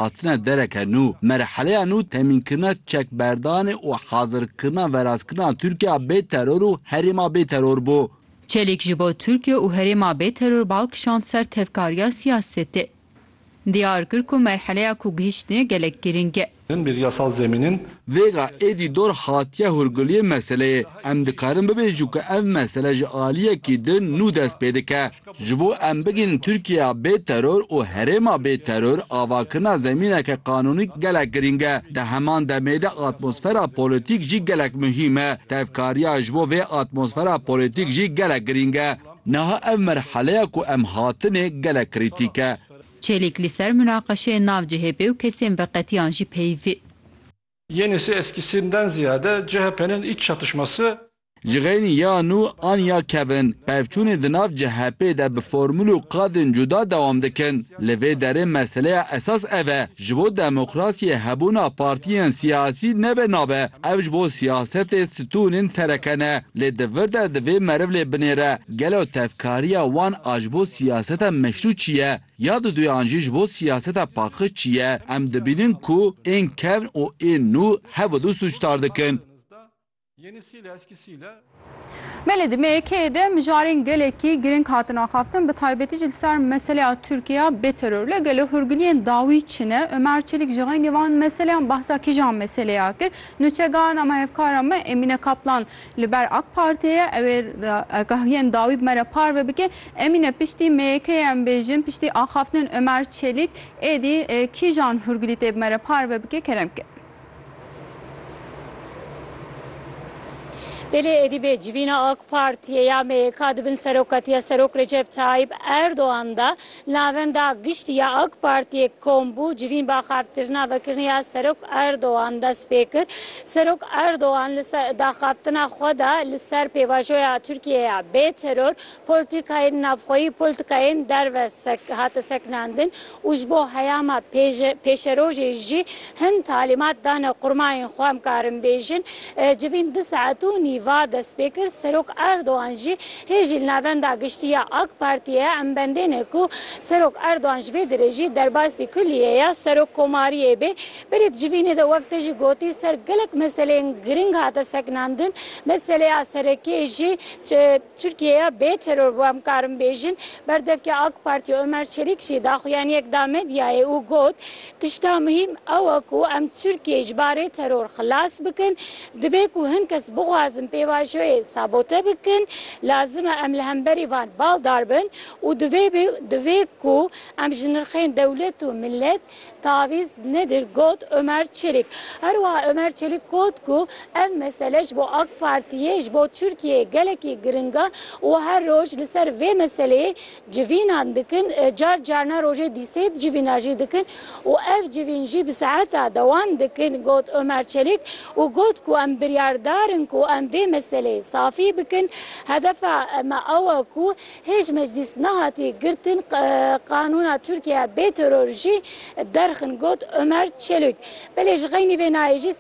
Hatine dereke nû, merheleya nû temînkirina çekberdanê û hazirkirina verazkirina Tirkiya bê teror û herêma bê teror bû. Çelîk ji bo Tirkiye û herêma bê teror bal kişand ser tevkariya siyasetê. Diyar kir ku merheleya ku gihiştine gelek girîng e. Bir yasal zemînin. Vêga êdî dor hatiye hûrguliyê meseleyê. Em dikarin bibêjin ku ev mesele ji aliyekî din nû dest pê dike. Ji bo em bigihînin Tirkiyeya bê teror û herêma bê teror, avakirina zemîneke qanûnî gelek girîng e. Di heman demê de atmosfera polîtîk jî gelek muhîm e. Tevkariya ji bo vê atmosfera polîtîk jî gelek girîng e. Niha ev merheleya ku em hatinê gelek krîtîk e. Çelîk li ser munaqeşeyên nav cihê bê û kesên bi qetiyan jî peyivî. Yenisi eskisinden ziyade CHP'nin iç çatışması. Ji xeynî ya nû an ya kevin, pevçûnê di nav CHP'ê de bi formûl û qadên cuda dewam dikin. Li vê derê meseleya esas ev e, ji bo demokrasiyê hebûna partiyên siyasî nebe nabe, ev ji bo siyasetê stûnên sereke ne. Lê di vir de divê meriv lê binêre, gelo tevkariya wan a ji bo siyaseta meşrû çi ye? Ya diduyan jî ji bo siyaseta paqij çi ye? Em dibînin ku ên kevn û ên nû hevidû sûcdar dikin. Belê di MYK'ê de mijarên gelekî girîng hatin axaftin, bi taybetî jî li ser meseleya Tirkiya bê teror. Lê gelo hûrgiliyên dawî çi ne? Omer Çelik ji xeynî van meseleyan behsa kîjan meseleya kir? Nûçegaha namehevkara me Emîne Kaplan Li ber ak Partê ye ew ê agahiyên dawî bi me re parve bike. Emîne piştî MYK'ê em bêjin, piştî axaftinên Ömer Çelik êdî kîjan hûrgilî tê bi me re parve bike kerem bike. Belê êdî bê civîna ak Partiyê ya MYK di bin serokatiya Serok Recep Tayyip Erdogan de, Navenda Giştî ya AK Partiyê kom bû, civîn bi axaftirina vekirine ya Serok Erdogan dest pê kir. Serok Erdogan li daxaftina xwe de li ser pêvajoya Tirkiyeyê ya bê teror, polîtîkayên navxweyî û polîtîkayên derve hate sekinandin û ji bo heyama pêşerojê jî Hin talîmat dane qurmayên xwe em karin bêjin. Civîn du saet û nîva dest pê kir. Serok Erdogan jî hê jî li Navenda Giştî ya AK Partiyê em bendêne ku Serok Erdogan ji vê derê jî derbasî kulîyê ya Serok Komariyê bê. Berê di civînê de wek te jî gotî ser gelek meseleyên giring hate sekinandin. Meseleya serekê jî Tirkiyeya bê teror bû em karin bêjin. Berdevkê AK Partiyê Omer Çelîk jî daxuyaniyek da medyayê û got, Tişta muhîm ew e ku em Tirkiyeyê ji barê teror xilas bikin. Dibe ku hin kes bixwazin pêvajoyê sabote bikin. Lazim e em li hemberî van baldar bin û divê ku em ji nirxên dewlet û milet Tavîz nedir got Omer Çelik. Herwiha Omer Çelik got ku ev mesele ji bo AK Partiyê, ji bo Tirkiyeyê gelekî giring e û her roj li ser vê meseleyê civînan dikin, car carna rojê dî sê civîna jî dikin û ev civîn jî bi seheta dewam dikin got Omer Çelik û got ku em biryardar in ku em vê meseleyê safî bikin. Hedefa me ew e ku Hêj meclîs nehatî girtin qanûna Tirkiyeya bê teror jî derxin got Omer Çelûk. Belê ji xeynî vê nayê jî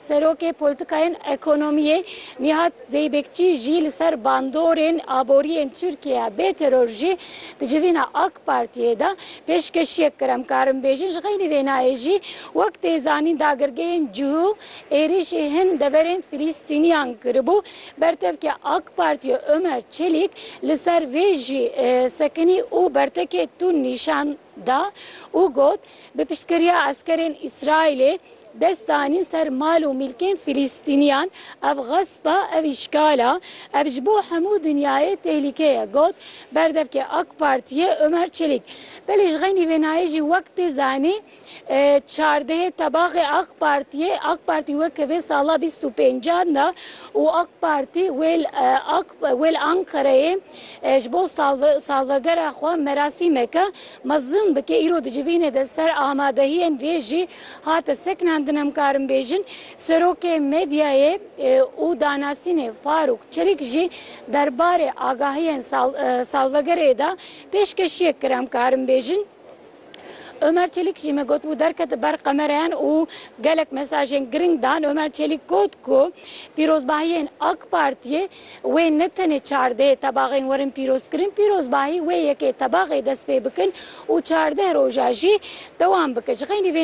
serokê polîtîkayên ekonomiyê Nîhat Zeybekçî jî li ser bandorên aboriyên Tirkiyeya bê teror jî di civîna AK Partiyê de pêşkeşiyek kir. Em karin bêjin ji xeynî vê nayê jî wek tê zanîn dagirgehên cihû êrîşî hin deverên Filîstîniyan kiribû. Bertevke AK Partiyê Ömer Çelik li ser vê jî sekinî û bertekê tund nîşan da û got, Bi piştgiriya eskerên Îsraîlê dest danîn ser mal û mîlkên Filistîniyan, ev xesp e, ev îşgal e, ev ji bo hemû dinyayê tehlîke ye, got berdevkê AK Partiyê Ömer Çelik. Belê ji xeynî vênayê jî wek tê zanîn, Çardehê tebaxê ak partiyê, ak partî weke vê sala bîst û pêncan de û ak partî wêl ak wêl Ankarayê ji bo salvegera xwe merasîmeke mezin bike îro di civînê de ser amadehiyên vê jî hate sekinandin em karin bêjin serokê medyayê û danasînê Farûk Çelîk jî derbarê agahiyên salvegerê de pêşkeşiyek kir em karin bêjin. Omer Çelik jî me gotibû derkete ber qemereyan û gelek mesajên giring dan. Omer Çelik got ku pîrozbahiyên AK Partiyê wê ne tenê çardehê tebaxên werin pîrozkirin, pîrozbahî wê yekê tebaxê dest pê bikin û çardeh roja jî dewam bike. Ji xeynî vê